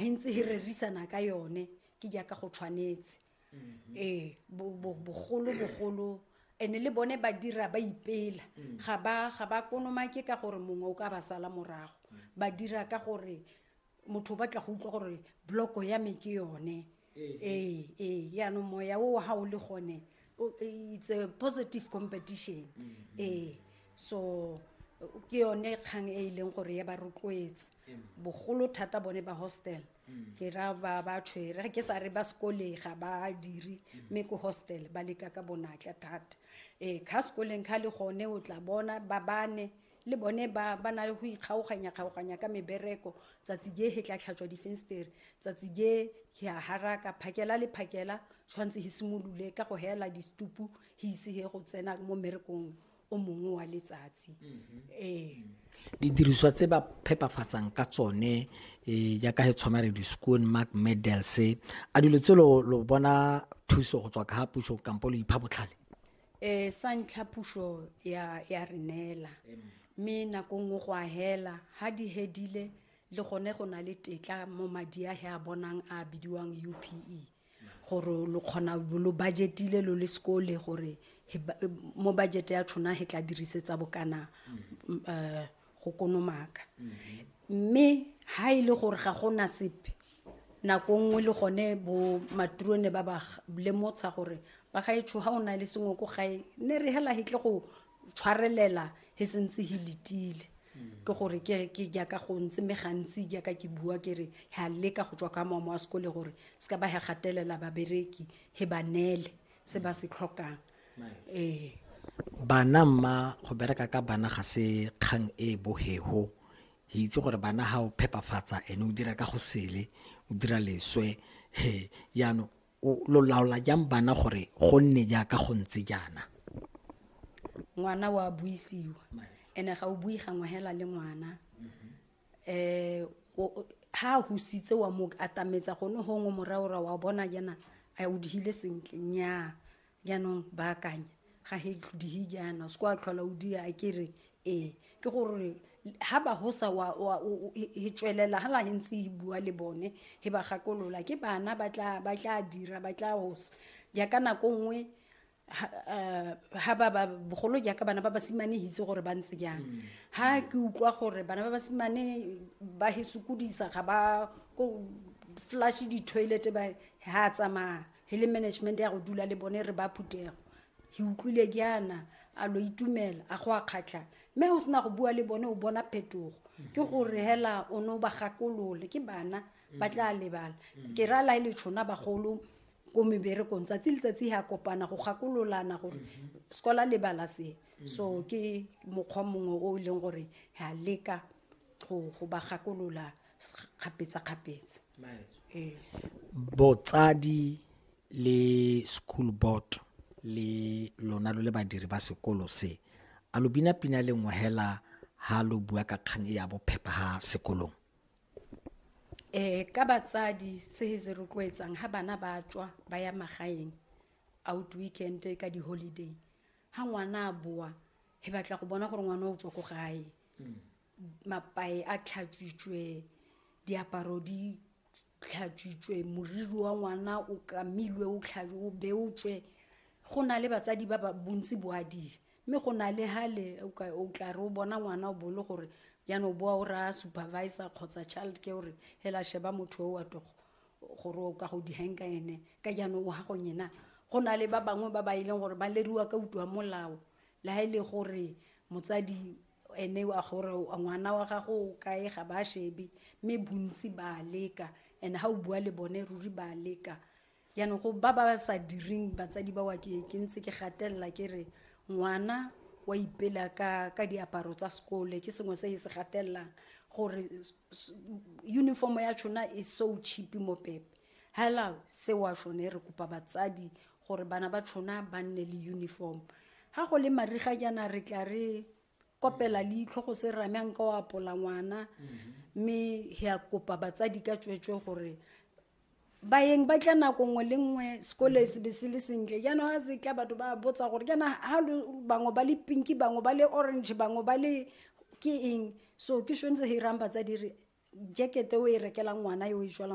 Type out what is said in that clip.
re ntse re rerisana ka yone ke jaaka go tshwanetse mm-hmm. ee bogolo bogolo ene le bone ba dira ba ipela mm. ga ba ga ba konomake ka gore mongwe o ka ba sala morago mm. ba dira ka gore motho o batla go utlwa gore bloko ya me ke yone ee ee jaanong moya o ga o le gone Oh, eh, it's a positive competition mm-hmm. ee so ke yone kgang e e leng gore ya ba rotloetse bogolo thata bone ba hostel mm. ke ra ba ba tshwere ke sa re ba sekoleng ga ba dire mm. mme ko hostel ba leka ka bonatla thata ee kha sekoleng kha le gone o tla bona ba bane Le bone ba ba na le go ikgaoganyakgaoganya ka mebereko, tsatsi je he tla tlhatswa difenstere, tsatsi je he a haraka, phakela le phakela tshwanetse he simolole ka go heela distupu he ise he go tsena mo mmerekong o mongwe wa letsatsi. Ee. Didiriswa tse ba phepafatsang ka tsone eh, jaaka he tshwana re di-scone mark medals a dilo tse lo lo bona thuso go tswa ka ga puso kampo lo ipha botlhale um sa ntlha puso ya ya re neela mme nako nngwe go a hela ga di hedile le gone go na le tetla mo madi a he a bonang a bidiwang u p e gore lo kgona lo budgetile lo le sekole gore mo budget ya tshona he tla dirisetsa bokana um go konomaka mme ha e le gore ga go na sepe nako nngwe le gone bo maturone ba ba lemotsha gore ba ga etsho ha o na le sengwe ko gae ne re hela hitle go tshwarelela he sentse he letile ke gore ke ke jaaka go ntse me gantsi jaaka ke bua ke re ha leka go tswa ka mamo a sekole gore se ka ba he gatelela babereki he ba nele se ba se tlhokang ee bana mma go bereka ka bana ga se kgang e e bohego re itse gore bana ga o phepafatsa ene o dira ka go sele o dira leswe he jaanong lo laola jang bana gore go nne jaaka go ntse jaana ngwana wa buisiwa ene ga o bui gangwe hela le ngwana eh ha a husitse wa mo atametsa go ne gongwe moraora wa bona jaana a o dihile sentle nnyaa jaanong baakanya ga he dihi jaana o se ko a tlhola o dia a kere ee ke gore ha ba hosa wa wa e tswelela ha la ntse e bua le bone he ba gakolola ke bana ba tla ba tla dira ba tla hosa ja ka nako nngwe ha ba ba bogolo jaaka bana ba basimane hitse gore ba ntse jang ha mm. ke utlwa gore bana ba basimane ba he sokodisa ga ba ko flash di-toilet ba ha tsamaya he le management ya go dula le bone re ba phutego he utlwile jaana a lo itumela a go a kgatlha mme o sena go bua le bone o bona phetogo mm. ke gore hela o ne o ba gakolole ke bana ba mm. tla lebala ke ra lae le tshona bagolo ko meberekong tsatsi letsatsi ga kopana go gakololana gore sekola le bala se so ke mokgwa mongwe o e leng gore ga leka go go ba gakolola kgapetsa-kgapetsa ee botsadi le school board le lona lo le badiri ba sekolo se a lo bina pina le ngwehela ha lo bua ka kgang e ya bophepha ha sekolong um ka batsadi se se rotloetsang ga bana ba tswa ba ya magaeng out weekend ka di-holiday ga ngwana a boa he batla go bona gore ngwana o tswa ko gae mm. mapae a tlhatswitswe diaparo di tlhatswitswe moriri wa ngwana o kamilwe o tlhatswe o beotswe go na le batsadi ba ba bontsi boadile mme go na le hale o tla re o bona ngwana o bole gore jaanong o boa o raya supervisor kgotsa child ke gore hela sheba motho o wa togo gore o ka go dihang ka ene ka jaanong o gagong ena go na le ba bangwe ba ba e leng gore ba leriwa ka utlwa molao le ga e le gore motsadi ene wa gore ngwana wa gago o kae ga ba shebe mme bontsi ba leka and ga o bua le bone ruri ba leka jaanong go ba ba sa direng batsadi ba wa ke ke ntse ke gatelela ke re ngwana wa ipela ka ka diaparo tsa sekole ke sengwe se e se gatelelang gore uniform ya tshona e so cheap mo pepe hela se wa shone re kopa batsadi gore bana ba tshona ba nne le uniform ha go le mariga jaana re tla re kopela leitlho go se rame a nka o apola ngwana mhm. mme ya kopa batsadi ka tswetswe gore bayeng ba tla nako nngwe le nngwe sekolo e sebe se le sentle jaanong ga se tla batho ba botsa gore jaana ga bangwe ba le pinki bangwe ba le orange bangwe ba le ke eng so ke shone se hirang batsadi re jekete o e rekelang ngwana yo e jwalang